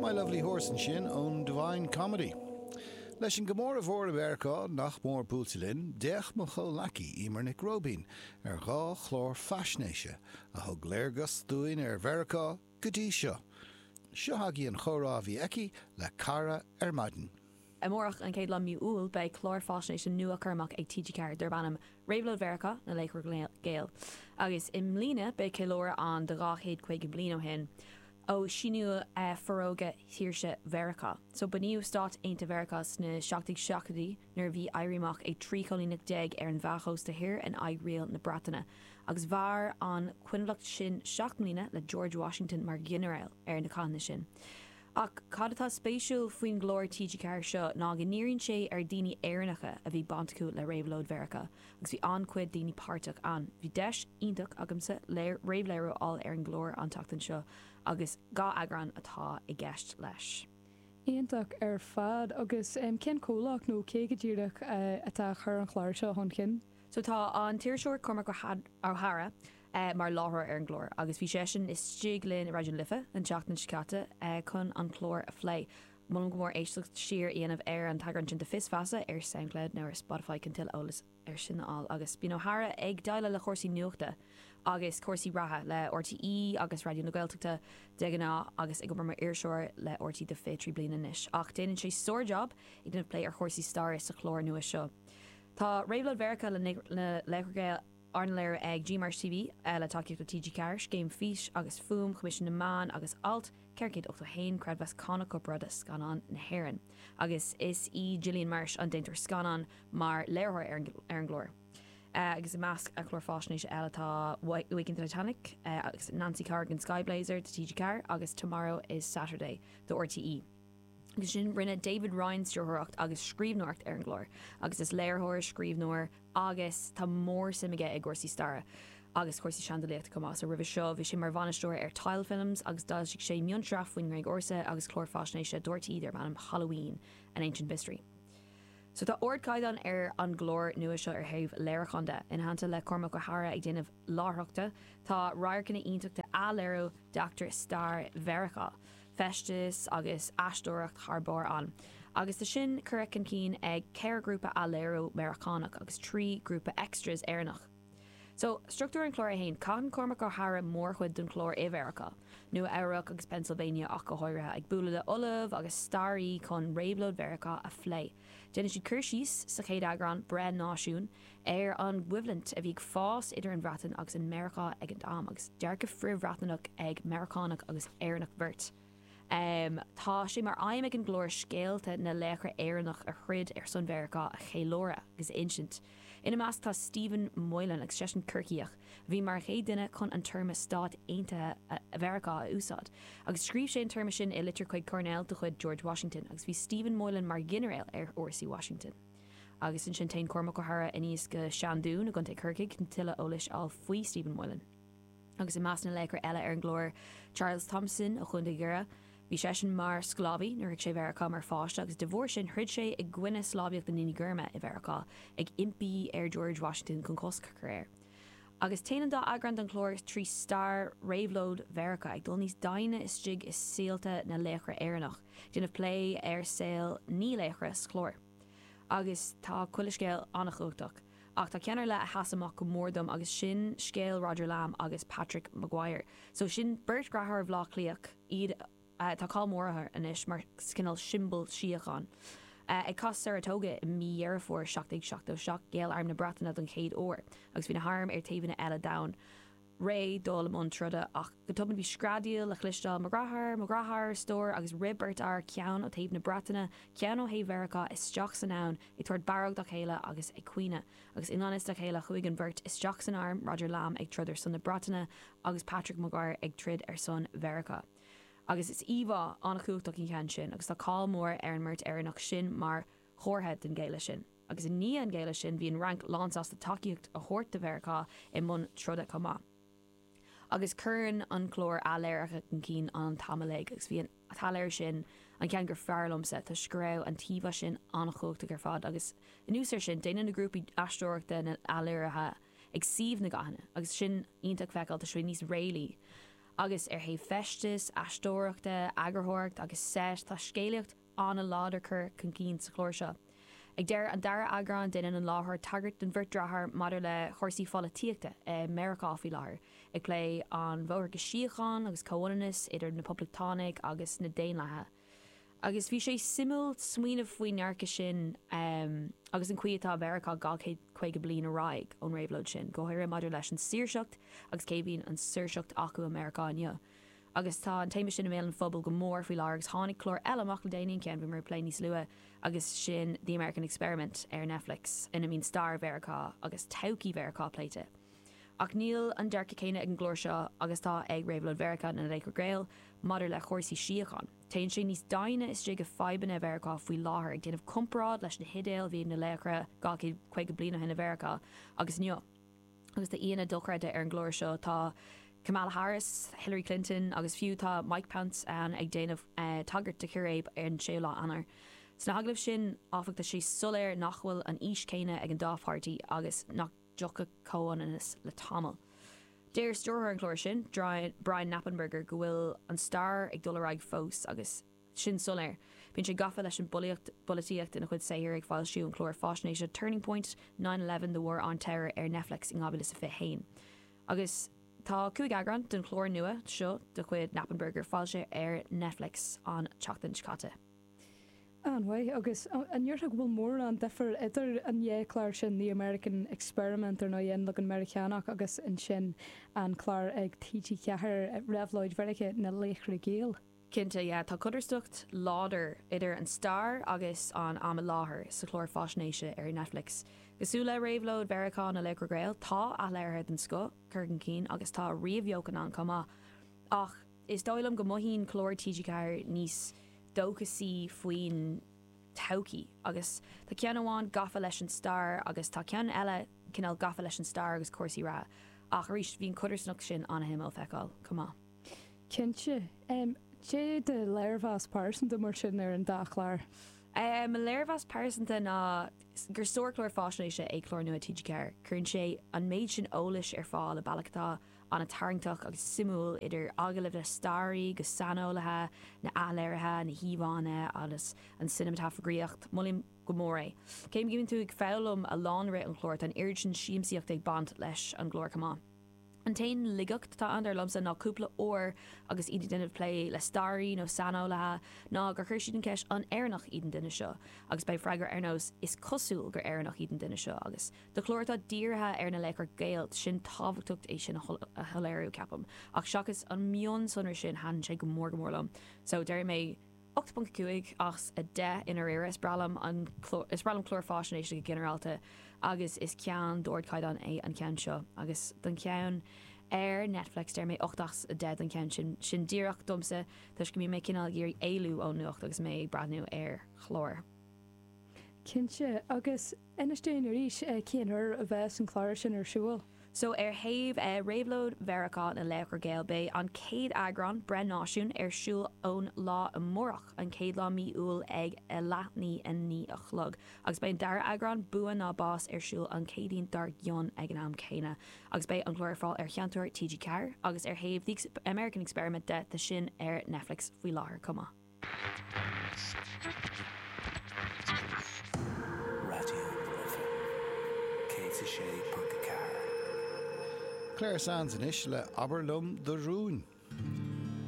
My Lovely Horse ansin ón Divine Comedy. Leis an gcomóradh mhór i Meiriceá nach mór buailte linn, d'fhéach mo chomhleacaí Emer Nic Róibín ar dhá chlár faisnéise a thug léargas dúinn ar Mheiriceá go dtí seo. Seo chugaibh an chomhrá a bhí aici le Cara ar maidin. Amárach, an chéad lá mí Iúil, beidh clár faisnéise nua á chur amach ag TG4 darb ainm Réabhlóid Mheiriceá, Na Laochra Gael. Agus i mbliana, beidh ceiliúradh ann de 250 bliain ó shin, ó síniú Forógra Shaoirse Mheiriceá. So, bunaíodh Stáit Aontaithe Mheiriceá sna seacht déag seachtóidí, nuair a bhí éirí amach ag 13 choilíneach ar an mheánchósta thoir in aghaidh riail na Breataine, agus mhair an coinbhleacht sin seacht mbliana le George Washington mar ghinearál ar na cathanna sin. Ach cad atá spéisiúil faoin gclár TG4 seo ná go ndíríonn sé ar daoine Éireannacha a bhí baint acu le Réabhlóid Mheiriceá agus bhí an-chuid daoine páirteach ann. Bhí deis iontach agamsa réamhléiriú a fháil ar an gclár an tseachtain seo agus dhá eagrán atá i gceist leis. Iontach ar fad. Agus cén comhlacht nó cé go díreach atá ag cur an chlár seo chun cinn? So tá an t-iriseoir Cormac Ó hEadhra, é mar láithreoir ar an gclár agus bhí seisean istigh linn i Raidió na Life an tseachtain seo caite chun an clár a phlé. Molaim go mór éisteacht siar a dhéanamh ar an t-eagrán sin de Fios Feasa ar Soundcloud nó ar Spotify chun tuilleadh eolas air sin a fháil. Agus bíonn Ó hEadhra ag déileáil le cúrsaí nuachta agus cúrsaí reatha le RTÉ agus Raidió na Gaeltachta de ghnáth agus ag obair mar iriseoir le RTÉ do 23 bliana anois. Ach déanann sé sár-jab ag déanamh plé ar chúrsaí staire sa chlár nua seo. Tá Réabhlóid Mheiriceá Na Laochra Gael Arna léiriú ag GMarsh TV, le tacaíocht ó TG Ceathair, Scéim Fís agus Fuaim, Choimisiún na Meán agus Alt 481, Creidmheas Cánach Corparáide Scannán na hÉireann, agus is í Gillian Marsh an déantóir scannán, mar léiritheoir ar an gclár. Agus i measc clár faisnéise eile tá Waking the Titanic agus Nancy Corrigan, Sky Blazer do TG4 agus Tomorrow is Saturday do RTÉ. Agus ansin, rinne David Ryan stiúrthóireacht agus scríbhneoireacht ar an gclár, agus is léiritheoir, scríbhneoir agus tá mór-suim aige i gcúrsaí staire agus cúrsaí seandálaíochta chomh maith. So roimhe seo, bhí sé mar bhainisteoir ar Tile Films agus d'fhoilsigh sé mionsraith faoin nGréig Ársa agus clár faisnéise do RTÉ darb ainm Halloween, An Ancient Mystery. So tá ardchaighdeán ar an gclár nua seo ar thaobh léiriúcháin de. I dteannta le Cormac Ó hEadhra ag déanamh láithreachta, tá radharcanna iontacha de athléiriú d'eachtraí stair Mheiriceá. feisteas agus aisteoireacht thar barr ann, agus tá sin curtha chun cinn ag ceithre ghrúpa athléirithe Meiriceánach agus trí ghrúpa extras Éireannach. So, struchtúr an chláir é féin, caitheann Cormac Ó hEadhra mórchuid den chlár i Mheiriceá, Nua Eabhrac agus Pennsylvania ach go háirithe, ag bualadh le ollaimh agus staraithe chun réabhlóid Mheiriceá a phlé. Déanann siad cur síos sa chéad eagrán, Breith Náisiún, ar an gcoimhlint a bhí ag fás idir an Bhreatain agus an Meiriceá ag an am, agus dearcadh frith-Bhreatnach ag Meiriceánach agus Éireannach beirt. Tá sé mar aidhm ag an gclár scéalta na laochra Éireannach a throid ar son Mheiriceá a cheiliúradh agus a insint. Ina measc tá Stephen Moylan agus seisean Corcaíoch. Bhí mar an chéad duine chun an téarma Stáit Aontaithe Mheiriceá a úsáid, agus scríobh sé an téarma sin i litir chuig Coirnéal de chuid George Washington, agus bhí Stephen Moylan mar ghinearéal ar fhórsaí Washington. Agus ansin téann Cormac Ó hEadhra aníos go Seandún i gContae Chorcaí chun tuilleadh eolais a fháil faoi Stephen Moylan. Agus i measc na laochra eile ar an gclár, Charles Thomson ó Chontae Dhoire, Bhí seisean mar sclábhaí nuair a shroich sé Meiriceá mar pháiste agus de bharr sin throid sé i gcoinne sclábhaíocht na ndaoine gorma i Mheiriceá, ag impí ar George Washington chun cosc a chur air. Agus téann an dá eagrán den chlár trí stair réabhlóid Mheiriceá, ag dul níos doimhne istigh i saolta na laochra Éireannach, ag déanamh plé ar saol naoi laochra sa chlár. Agus tá chuile scéal an-chumhachtach. Ach tá ceann ar leith a sheas amach go mór dom agus sin scéal Roger Lamb agus Patrick Maguire. So sin beirt dheartháir ó Bhleá Cliath, iad atá cáil mór ortha anois mar cineál siombal síocháin. Ag cath Saratoga i mí Dheireadh Fómhair 1777 ghéill arm na Breataine don chéad uair agus bhí na hairm ar taobhanna eile den abhainn. réidh dul i mbun troda, ach go tobann bhí screadaíl le chloisteáil, Mo dheartháir! Mo dheartháir! a stór, agus rith beirt fhear, ceann ó thaobh na Breataine, ceann ó thaobh Mheiriceá, isteach san abhainn, ag tabhairt barróg dá chéile agus ag caoineadh. Agus i ngan fhios dá chéile chuaigh an bheirt isteach san arm, Roger Lamb ag troid ar son na Breataine agus Patrick Maguire ag troid ar son Mheiriceá. Agus is íomhá an-chumhachtach í cheann sin, agus tá cáil mhór ar an mbeirt Éireannach sin mar, chomhartha den ghéilleadh sin. Agus i ndiaidh an ghéilleadh sin, bhí an Fhrainc lánsásta tacaíocht a thabhairt do Mheiriceá i mbun troda chomh maith. Agus cuireann an clár athléirithe chun cinn an t-am ar fad, agus bhí an t-athléiriú sin an ceann gur fearr liomsa, toisc go raibh an t-íomhá sin an-chumhachtach ar fad, agus anuas air sin, déanann na grúpaí aisteoireachta na hathléirithe ag suíomh na gcathanna, agus sin iontach feiceáil, toisc go bhfuil sé níos réalaí. Agus ar thaobh feistis, aisteoireachta, eagarthóireacht agus seit, tá scéalaíocht, ana láidir curtha chun cinn sa chlár seo. Ag deireadh an dara eagrán déanann an láithreoir tagairt don bheirt deartháir maidir le chúrsaí pholaitíochta i Meiriceá faoi láthair, ag plé an bhóthar go síocháin agus comhfhulaingt idir na Poblachtánaigh agus na Daonlathaigh. Agus bhí sé suimiúil smaoineamh faoin ndearcadh sin agus an chaoi atá Mheiriceá 250 bliain ar aghaidh ón réabhlóid sin, go háirithe maidir leis an saoirseacht agus cé a bhíonn an saoirseacht acu i Meiriceá inniu. agus tá an téama sin i mbéal an phobail go mór faoi láthair agus tháinig clár eile amach le déanaí, an ceann a bhí mé ag plé níos luaithe agus sin The American Experiment ar Netflix ina mbíonn stair Mheiriceá agus todhchaí Mheiriceá pléite. Ach níl an dearcadh céanna ag an gclár seo agus atá ag Réabhlóid Mheiriceá na Laochra Gael maidir le chúrsaí síocháin. Téann sé níos doimhne istigh i fadhbanna Mheiriceá faoi láthair, ag déanamh comparáid leis na hidéil a bhí ag na laochra dhá chéad caoga bliain ó shin i Mheiriceá agus inniu. Agus tá aíonna dochreidte ar an gclár seo, tá Kamala Harris, Hillary Clinton agus fiú tá Mike Pence ann ag déanamh tagairt do chiréib ar an 6ú lá Eanáir. Sna hagallaimh sin, áfach, tá sé soiléir nach bhfuil an fhís chéanna ag an dá pháirtí agus nach dtiocfaidh comhionannas le tamall. Deir stiúrthóir an chláir sin, Brian Knappenberger go bhfuil an stair ag dul ar aghaidh fós agus, sin soiléir. Bíonn sé gafa leis an bpolaitíocht ina chuid saothar, ag foilsiú an chláir faisnéise Turning Point, Nine Eleven, The War on Terror ar Netflix in 2021. Agus tá cúig eagrán den chlár nua seo de chuid Knappenberger foilsithe ar Netflix an tseachtain seo caite. An-mhaith. Agus an ndéarfá go bhfuil mórán difir idir an dá chlár sin, The American Experiment, ar ndóigh, An Leagan Meiriceánach, agus ansin an clár ag TG4, Réabhlóid Mheiriceá, Na Laochra Gael? Cinnte, yeah, tá codarsnacht láidir idir an stair agus an am i láthair sa chlár faisnéise ar Netflix. Cosúil le réabhlóid Mheiriceá na Laochra Gael, tá athléirithe den scoth curtha chun cinn agus tá ríomhbheochan ann chomh maith. Ach is dóigh liom go mothaíonn clár TG4 níos dóchasaí faoin todhchaí agus tá ceann amháin gafa leis an stair agus tá ceann eile cineál gafa leis an stair agus cúrsaí reatha ach arís bhí an codarsnacht sin an-suimiúil feiceáil chomh maith. Cinnte. Cad é do léirmheas pearsanta mar sin ar an dá chlár? Mo léirmheas pearsanta ná gur sárchlár faisnéise é clár nua TG4. Cuireann sé an méid sin eolais ar fáil i bealach atá an-tarraingteach agus suimiúil, idir agallaimh le staraí agus saineolaithe, na hathléirithe, na híomhánna agus an cineamatagrafaíocht. Molaim go mór é. Cé go mbíonn tú ag foghlaim a lán i rith an chláir, tá an oiread sin siamsaíocht ag baint leis an gclár chomh maith. An t-aon laigeacht atá ann, dar liomsa, ná cúpla uair agus iad ag déanamh plé le staraí nó saineolaithe ná gur chuir siad an cheist 'An Éireannach iad an duine seo? agus beidh freagra ar nós 'Is cosúil gur Éireannach iad an duine seo' agus do chlár atá dírithe ar na laochra Gael, sin tábhachtacht é sin a shoiléiriú, ceapaim, ach seachas an mionsonra sin thaitin sé go mór go mór liom. So, déarfaidh mé. 8.5 as 10 I ndáiríre, is breá liom an clár, is breá liom cláir faisnéise go ginearálta, agus is ceann d'ardchaighdeán é an ceann seo. Agus don cheann ar Netflix, deir mé 8 as 10 don cheann sin. Sin díreach domsa, toisc go mbíonn mé cineál ag iarraidh éalú ón nuacht agus mé ag breathnú ar chlár. Cinnte, agus Inis dúinn arís cén uair a bheas an clár sin ar siúl. So ar thaobh Réabhlóid Mheiriceá na Laochra Gael beidh an chéad eagrán, Breith Náisiún, ar siúl ón lá amárach, an chéad lá mí Iúil ag a leath i ndiaidh a naoi a chlog. Agus beidh an dara eagrán, Bua nó Bás, ar siúl an Chéadaoin dár gcionn ag an am céanna. Agus beidh an clár ar fáil ar Sheinnteoir TG4. Agus ar thaobh The American Experiment de, tá sin ar Netflix faoi láthair chomh maith. Clare Sands anois le 'Abair Liom Do Rúin'.